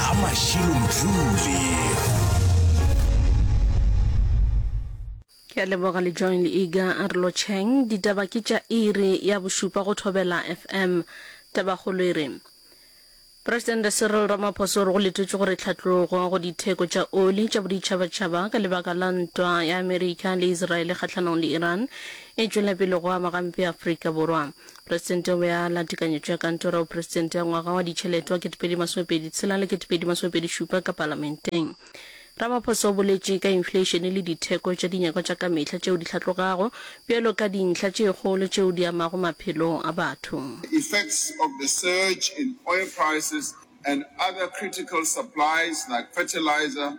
a mašilo mdlule ke a leboga le join ega a re lotšheng ditaba ke tša iri ya bošupa go thobela fm tabakgolo e re presidente cyril ramaphosa o re go letetšwe gore tlhatlogo go ditheko tša oli tša boditšhabatšhaba ka lebaka la ntwa ya amerika le israele kgahlanong le iran e tšwela pele go ama gampe afrika borwa Presidente o be a la tekanyetšo ya Kantoro ya Bopresidente ya ngwaga wa ditšhelete wa 2026 le 2027 ka Palamenteng. Ramaphosa o boletše ka infleišene le ditheko tša dinyakwa tša ka mehla tšeo di hlatlogago bjalo ka dintlha tše kgolo tšeo di amago maphelo a batho. The effects of the surge in oil prices and other critical supplies like fertilizer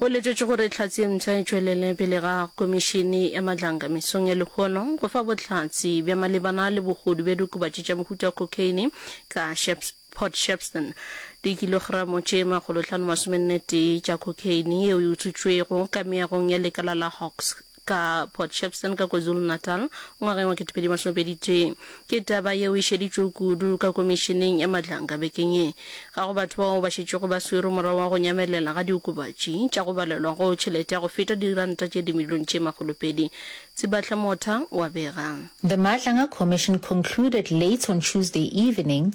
Go letetšwe gore tlhatse ye mpsha e tšwelele pele ga Komišene ya Matlanka mesong ya lehono go fa bohlatse bja malebana le bogodu bja diokobatši tša mohuta wa cocaine ka Port Shepstone. Dikilogramo tše makgolohlano masomenetee tša cocaine yeo e utswitšwego ka meagong ya lekala la Hawks ka Port Shepstone ka KwaZulu-Natal ngwageng wa ketepedi masome pedi tee. Ke taba yeo e šeditšwego kudu ka Komišeneng ya Madlanka bekeng ye. Ga go batho bao ba šetšego ba swerwe morago ga go nyamelela ga diokobatši tša go balelwa go tšhelete ya go feta diranta tše dimilione tše makgolo pedi, Tsibahle Motha wa bega. The Madlanga Commission concluded late on Tuesday evening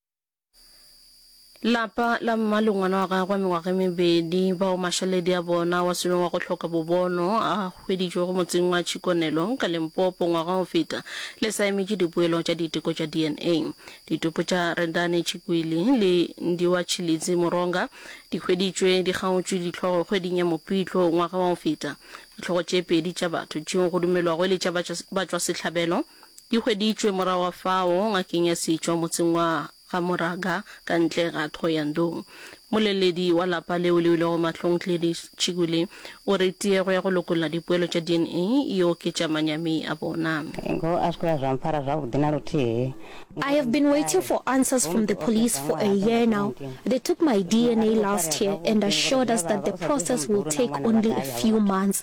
Lapa la mma le ngwana wa gagwe wa mengwaga e mebedi, bao mašaledi a bona wa seno wa go hloka bobono a hweditšwego motseng wa Chikonelo ka Limpopo ngwaga o feta, le sa emetše dipoelo tša diteko tša DNA. Ditopo tša Rendani Chikwili le Ndiwa Chilidzi Moronga di hweditšwe di kgaotšwe dihlogo kgweding ya Mopitlo ngwaga wa go feta. Dihlogo tše pedi tša batho tšeo go dumelwago e le tša batšwasehlabelo, Di hweditšwe morago ga fao ngakeng ya setšwa motseng wa ga Moraga ka ntle ga Thohoyandou. Moleledi wa lapa leo le ilego mahlong Gladys Chigule o re tiego ya go lokolla dipoelo tša dna e oketša manyami a bona. I have been waiting for answers from the police for a year now. They took my dna last year and assured us that the process will take only a few months.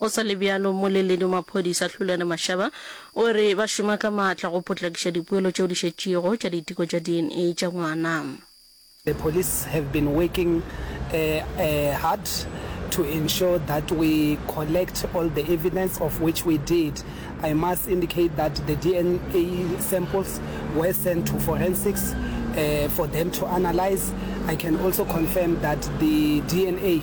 Go sa le bjalo, Mmoleledi wa Maphodisa Hlulane Mashaba o re ba šoma ka maatla go potlakiša dipoelo tšeo di šetšego tša diteko tša DNA tša ngwana. The police have been working hard to ensure that we collect all the evidence of which we did. I must indicate that the DNA samples were sent to forensics for them to analyse. I can also confirm that the DNA.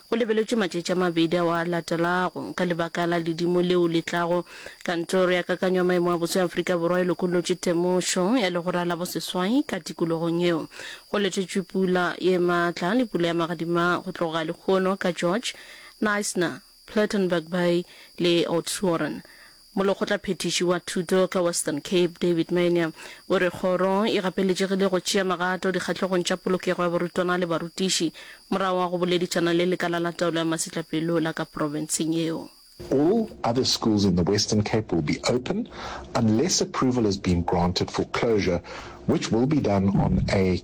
Go lebeletšwe matšatši a mabedi ao a latelago. Ka lebaka la ledimo leo le tlago, Kantoro ya Kakanyo ya Maemo a Boso ya Afrika Borwa e lokollotše temošo ya legora la boseswai ka tikologong yeo. Go letetšwe pula ye matla le pula ya magadima go tloga lehono ka George, Knysna, Plettenberg Bay le Oudtshoorn. Molekgotlaphethiši wa Thuto ka Western Cape, David Mania, o re kgoro e gapeletšegile go tšea magato dikgahlogong tša polokego ya barutwana le barutiši morago ga go boledišana le lekala la taolo ya masetlapelo la ka profenseng yeo. All other schools in the Western Cape will be open unless approval has been granted for closure which will be done on a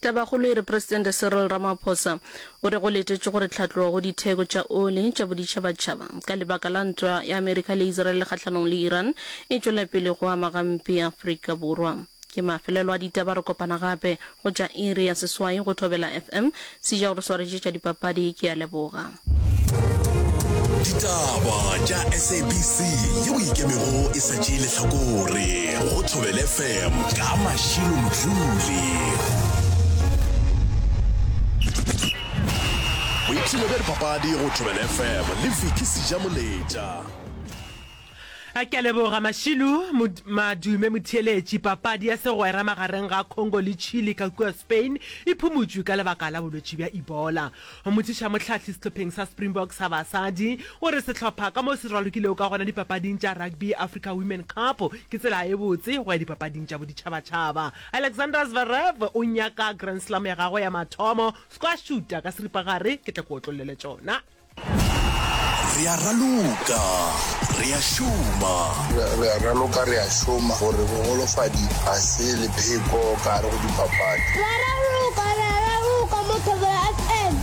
Tabakgolo e re Presidente Cyril Ramaphosa o re go letetšwe gore tlhatlogo go ditheko tša oli tša boditšhabatšhaba ka lebaka la ntwa ya Amerika le Israel kgahlanong le Iran e tšwela pele go ama gampe Afrika Borwa. Ke mafelelo a ditaba re kopana gape go tša iri ya seswai go Thobela FM Sija go re swaretše tša dipapadi ke a leboga. Ditaba tša SABC yeo e ikemego e sa tšee lehlakore go Thobel FM ka Mashilo Mdluli. Boipshino bja dipapadi go Thobel FM le Vicky Sijamoletša. Ke a leboga Mashilo Madume motheeletši. Papadi ya segwera magareng ga Congo le Chile ka kua Spain e phumutšwe ka lebaka la bolwetši bja Ebola. Mothušamohlahli sehlopheng sa Springboks sa basadi o re sehlopha ka mo se ralokilego ka gona dipapading tša Rugby Africa Women Cup ke tsela e botse go ya dipapading tša boditšhabatšhaba. Alexander Zverev o nyaka Grand Slam ya gagwe ya mathomo. Squashuta ka seripagare ke tla ke otlollele tšona. Re a raloka, re a šoma. Re a raloka, re a šoma. Gore bogolofadi ga se lepheko ka gare go dipapadi. Re a raloka, re a raloka mo Thobela FM.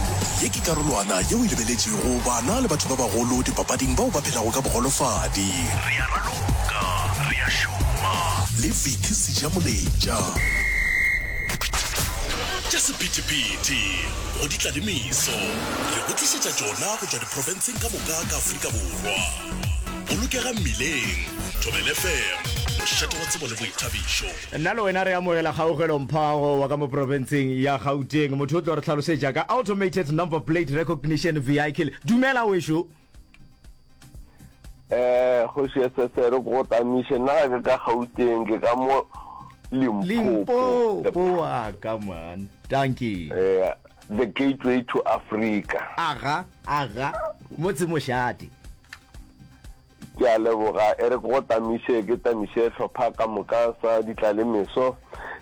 Ye ke karolwana yeo e lebeletšego bana le batho ba bagolo dipapading bao ba phelago ka bogolofadi. Re a raloka, re a šoma. Le Vicky Sejamoletša. Tša sephethephethe. go di tla le meso. Re go tlišetša tšona go tšwa diprofenseng ka moka ka Afrika Borwa. Bolokega mmileng, Thobel FM, mošate wa tsebo le boithabišo. Nna le wena re amogela kgaugelo mphago wa ka mo profenseng ya Gauteng. Motho o tlo re hlalosetša ka automated number plate recognition vehicle. Dumela wešo. eh kgoši ya sesere ko tamiše nna ga ke ka gauteng ke ka mo limpopo wa ka man danki eh, the gateway to africa aga aga motse mošate ke a leboga e re go tamiše ke tamiše tlhopha ka moka sa ditla le meso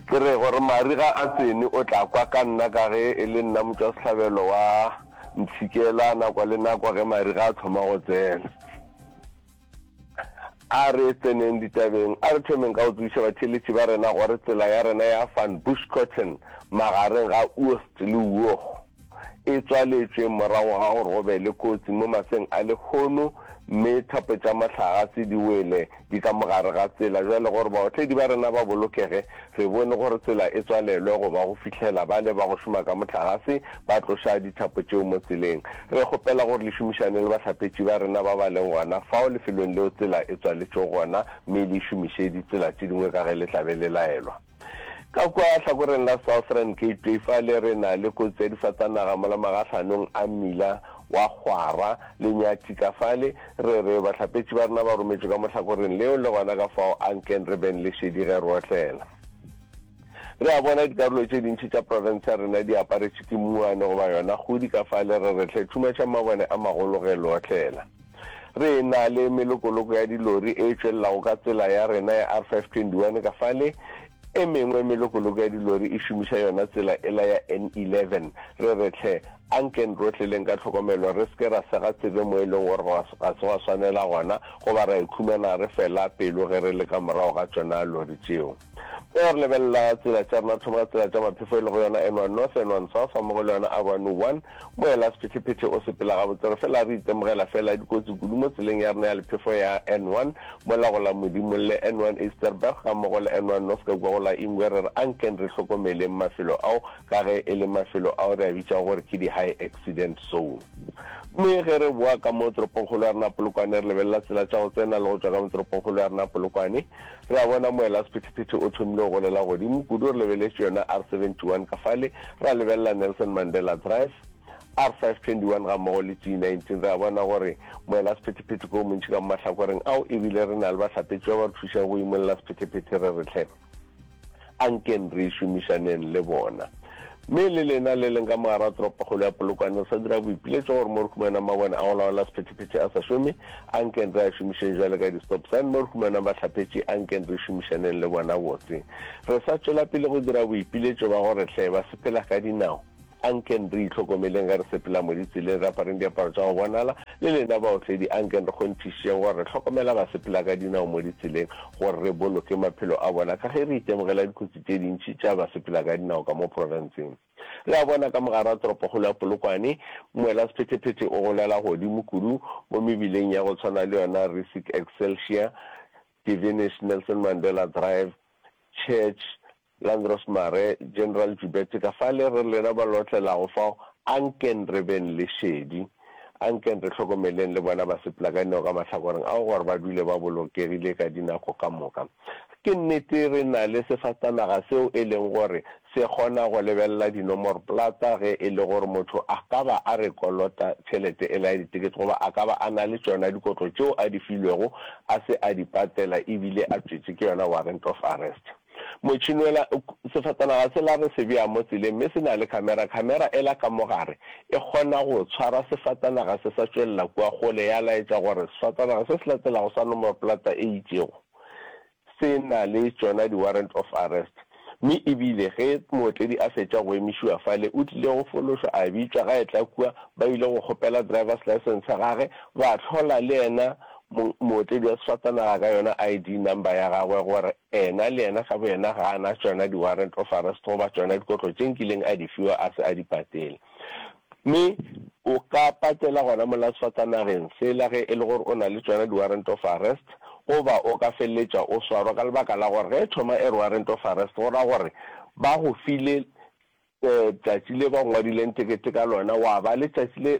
ke re gore mariga a tsene o tla kwa ka nna ka ge e le nna motswa sehlabelo wa Ntshikela nakwa le nakwa ge mariga a thoma go tsena. A re tseneng ditabeng, a re thomeng ka go tsebiša batheeletši ba rena gore tsela ya rena ya Van Buskirchen magareng ga Oost le Uoch e tswaletšwe morago ga gore go be le kotsi mo maseng a lehono mme thapo tša mohlagase di wele Di ka mo gare ga tsela. Bjale gore baotledi ba rena ba bolokege, re bone gore tsela e tswalelwe go ba go fihlela bale ba go šoma ka mohlagase ba tloša dithapo tšeo mo tseleng. Re kgopela gore le šomišane le bahlapetši ba rena ba ba leng gona fao lefelong leo tsela e tswaletšwego gona mme le e šomiše ditsela tše dingwe ka ge le tla be le laelwa. Ka kwa hlakoreng la Southern Gateway fale re na le kotsi ya difatanaga mola magahlanong a mmila wa Kgwara le Nyathi ka fale. Re re bahlapetši ba rena ba rometšwe ka mohlakoreng leo le gona ka fao a nkeng re beng le šedi ge re otlela. Re a bona dikarolo tše dintši tša profense ya rena di aparetšwe ke mmuane goba yona kgodi ka fale re re hle thumaša mabone a magolo ge le otlela. Re na le melokoloko ya dilori e tšwelelago ka tsela ya rena ya R521 ka fale, e mengwe melokoloko ya dilori e šomiša yona tsela ela ya N11. Re re hle, anken ro tleleng ka tlhokomelo, re se ke ra sega tsebe mo e leng gore ga se gwa swanela gona, goba ra ikhumana re fela pelo ge re le ka morago ga tšona lori tšeo. Go ya re lebelela tsela tša rena, thoma ka tsela tša maphefo e lego yona N1 North, N1 South ga mmogo le yona Avenue 1. Moela sephetephete o sepela gabotse, re fela re itemogela fela dikotsi kudu mo tseleng ya rena ya lephefo ya N1 mola go la Modimo le N1 Easterberg ga mmogo le N1 North ka kua go la Ingwe. Re re ankeng re hlokomeleng mafelo ao ka ge e le mafelo ao re a bitšago gore ke di-high accident zone. Mme ge re boa ka mo toropongkgolo ya rena Polokwane re lebelela tsela tša go tsena le go tšwa ka mo toropongkgolo ya rena Polokwane, Re a bona moelasephethephethe o thomile go golela godimo kudu, re lebeletše yona R71 ka fale, ra lebelela Nelson Mandela Drive, R521, gammogo le T19. Re a bona gore moelasephethephethe ke o montši ka mo mahlakoreng ao, e bile re na le bahlapetši ba ba re thušago go imolla sephethephethe re re hle. A nkeng re šomišaneng le bona. Mme le lena le leng ka mogare wa toropokgolo ya Polokwane, re sa dira boipiletšo gore mo re humanang mabone a go laola sephethephethe a sa šome, a nkeng re a šomišeng bjale ka di-stop sign. Mo re humanang bahlaphetši, a nkeng re šomišaneng le bona botse. Re sa tšwela pele go dira boipiletšo ba gore hle ba sepela ka dinao. A nkeng re itlhokomeleng ge re sepela mo ditseleng, re apareng diaparo tša go bonala. Le lena baotledi, a nkeng re kgonthišitšeng gore re hlokomela basepela ka dinao mo ditseleng gore re boloke maphelo a bona ka ge re itemogela dikotsi tše dintši tša basepela ka dinao ka mo profenseng. Re a bona ka mogare wa toropokgolo ya Polokwane, moelasephetephete o golela godimo kudu mo mebileng ya go tshwana le yona Rissick Excelsior, Devenish, Nelson Mandela Drive, Church, Landros Mare, General Jubete ka fale re lena ba lotlelago fao, ankeng re beng le šedi. Ankeng re hlokomeleng le bona ba sepela ka dinao ka mahlakoreng ao gore ba dule ba bolokegile ka dinako ka moka. Ke nnete re na le sefatanaga seo e leng gore se kgona go lebelela dinomorplata ge e le gore motho a ka ba a re kolota tšhelete ela ya ditekete goba a ka ba a na le tšona dikotlo tšeo a di filwego a se a di patela e bile a tšwetše ke yona warrant of arrest. Motšhinoela, Sefatanaga sela re se bea mo tseleng mme se na le khamera. Khamera ela ka mo gare e kgona go tshwara sefatanaga se sa tšwelela kua kgole ya laetša gore sefatanaga se se latelago sa nomoroplata e itšego se na le tšona di-warrant of arrest mme e bile ge mootledi a fetša go emišiwa fale o tlile go fološwa a bitšwa ga etla kua ba ile go kgopela driver's licence ya gage ba hlola le yena mootledi wa sefatanaga ka yona ID number ya gagwe gore Ena le yena ka boyena ga a na tšona di-warrant of arrest goba tšona dikotlo tše nkileng a di fiwa a se a di patele. Mme o ka patela gona molato fa tsa nageng fela ge e le gore o na le tšona di-warrant of arrest goba o ka feleletša o swarwa ka lebaka la gore ge e thoma e re warrant of arrest go ra gore ba go file Tšatši le ba ngwadileng tekete ka lona gwa ba le tšatši le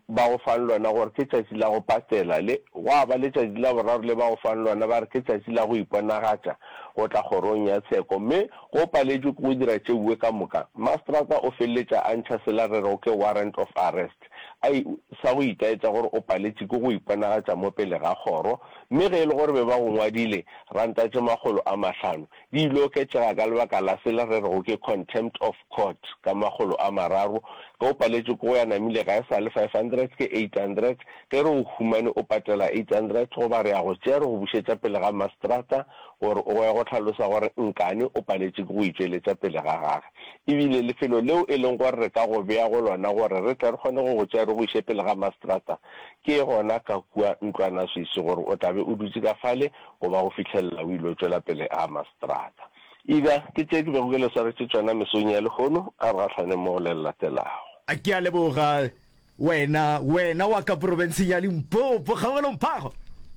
ba go fang lona gore ke tšatši la go patela, le gwa ba le tšatši la boraro le ba go fang lona ba re ke tšatši la go iponagatša go tla kgorong ya tsheko. Mme ge o paletšwe ke go dira tšeuwe ka moka, mastrata o feleletša a ntšha sela re rego ke warrant of arrest, ai, sa go itaetša gore o paletše ke go iponagatša mo pele ga kgoro. Mme ge e le gore be ba go ngwadile rantatše makgolo a mahlano, Di ile oketšega ka lebaka la se le rerego ke contempt of court ka makgolo a mararo, ge o paletše ko go ya namile ga e sa le 500 ke 800, ge re o humane o patela 800 goba re a go tšea re go bušetša pele ga mastrata gore o ye go hlalosa gore nkane o paletše ke go itšweletša pele ga gage ebile lefelo leo e leng gore re ka go bea go lona gore re tle re kgone go go tšea re go iše pele ga mastrata ke gona ka kua ntlwanaswisi gore o tla be o dutše ka fale goba go fihlelela o il'o tšwela pele a ama seterata. Ida, ke tše ke bego ke le swaretše tšona mesong ya lehono, a re gahlaneng mo go le le latelago. A ke a leboga, wena, wena wa ka porofenseng ya Limpopo, kgaogelong phago.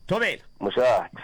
Thobela. Mošate.